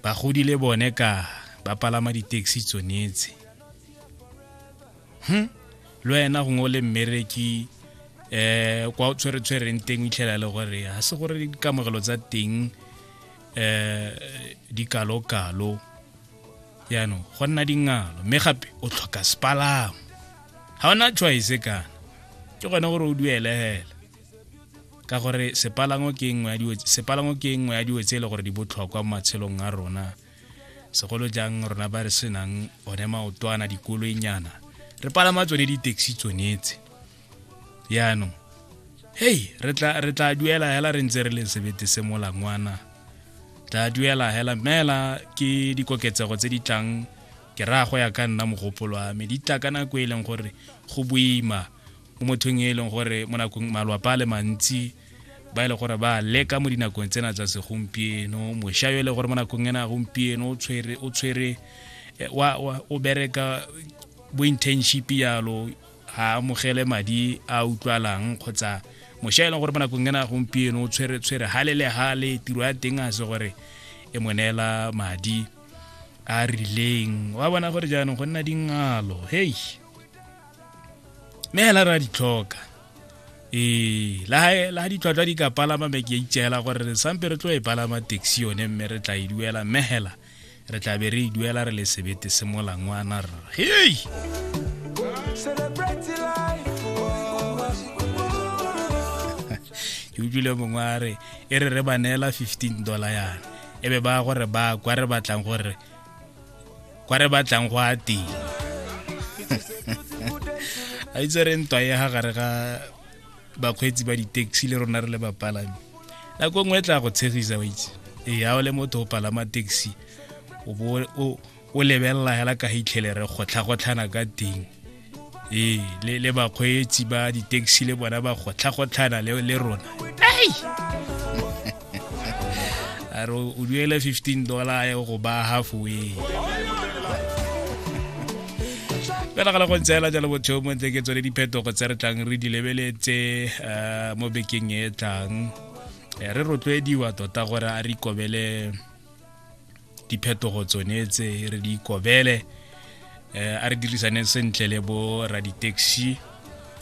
bagodi le bone ka ba palama di-taxi tsonetse hm le wena gongwe o le mmereki eh kwa o tshwere-tshwereng teng o itlhela le gore ga se gore dikamogelo tsa teng eh di kalo-kalo yaanong go nna dingalo mme gape o tlhoka sepalamo ga ona choice kana ke gone gore o duele hela ka gore sepalango ke nngwe ya dilo sepalango ke nngwe ya dilo tse e le gore di botlhokwa mo matshelong a rona segolo jang rona ba re senang one maotwana dikoloinyana re palama tsone di-taxi tsonetse yaanong hei re tla re tla duela hela re ntse re le sebete se molangwana tla duela hela mela ke dikoketsego tse di tlang ke raya go ya ka nna mogopolo wa me di tla ka nako e leng gore go boima mo mothong e leng gore mo nakong malwapa a le mantsi ba e le gore ba leka mo dinakong tsena tsa segompieno mošwa yo e le gore mo nakong ena gompieno o tshwere o tshwere eh, wa o bereka bo internship yalo ha amogele madi a utlwalang kgotsa mošwa e leng gore mo nakong ena gompieno o tshwere tshwere hale le hale tiro ya teng a se gore e mo neela madi a rileng wa bona gore jaanong go nna dingalo hei mme hela re a di tlhoka ee la ditlhwatlhwa di ka palama me ke itseela gore re sampe re tlo e palama taxi yone mme re tla e duela mme hela re tla be re e duela re le sebete se molangwana rra hei ke utlwile mongwe a re e re re ba neela fifteen dollar yana e be ba gore ba kwa re batlang gore kwa re batlang go a teng a itse re ntwa ya ga gare ga bakgweetsi ba di-taxi le rona re le bapalami nako nngwe e tla go tshegisa wa itse ee a o le motho o palama taxi o lebelela hela ka hitlhelere gotlhagotlhana ka teng ee le, le bakgweetsi ba di-taxi le bona ba gotlhagotlhana le, le rona ai a re o duele 15 dollar ya go ba halfway fela ga le go ntseela jalo botho mo ntse ke tsone diphetogo tse re tlang re di lebeletse eh, mo bekeng e tlang eh, re rotloediwa tota gore a re ikobele diphetogo tsone tse re di ikobele eh, a re dirisane sentle le bo raditaxi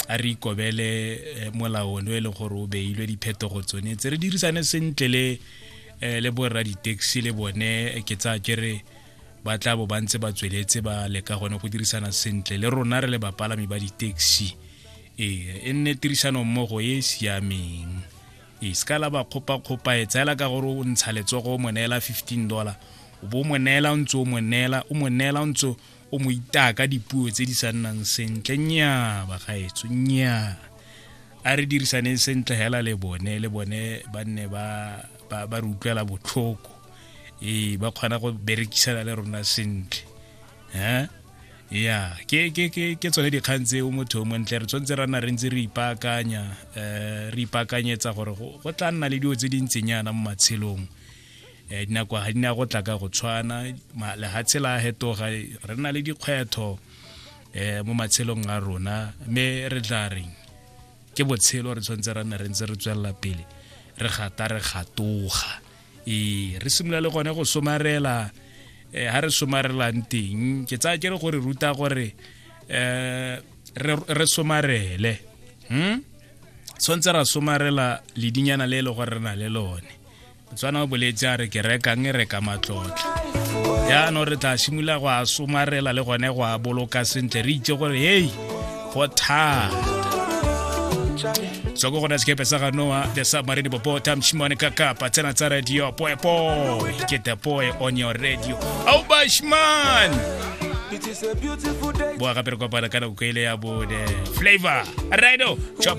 a re ikobele eh, molaono e le gore o beilwe diphetogo tsone tse re dirisane sentle le eh, le bo raditaxi le bone ke tsa ke re ba tla bo ba ntse ba tsweletse ba leka gone go dirisana sentle le rona re le bapalami ba ditaxi ee e nne tirisano mmogo e e siameng e se ka la ba kgopakgopa e tseela ka gore o ntsha letsogo o mo neela 15 dollar o bo o mo neela o ntse o mo neela o mo neela o ntse o mo itaya ka dipuo tse di sa nnang sentle nnyaa bagaetso nnyaa a re dirisaneng sentle hela le bone le bone ba nne ba re utlwela botlhoko ee ba kgona go berekisana le rona sentle eh ya ke ke ke ke tsone dikgang tseo motho o montle re tshwanetse ra nna re ntse re ipaakanya um re ipaakanyetsa gore go tla nna le dilo tse di ntsenyana mo matshelong um eh, dinako ga di ne go tla ka go tshwana lehatshe la hetoga re na le dikgwetho um mo matshelong a rona mme re tla reng ke botshelo re tshwanetse ra nna re ntse re tswelela pele re gata re gatoga ee re simolola le gone go somarela um ha re somarelang teng ke tsaya ke re gore ruta gore um re somarele um tshwanetse ra somarela ledinyana le e le gore re na le lone motswana o boletse a re ke rekang e reka matlotla yaanong re tla simolola go a somarela le gone go a boloka sentle re itse gore hei go thata so go gona sekepe sa ganoa the submarine popo tamshimane ka kapa tsena tsa radio poepo ke the boy on your radio au bashman boa gape re kopana ka nako e ile ya bone flavor rido chop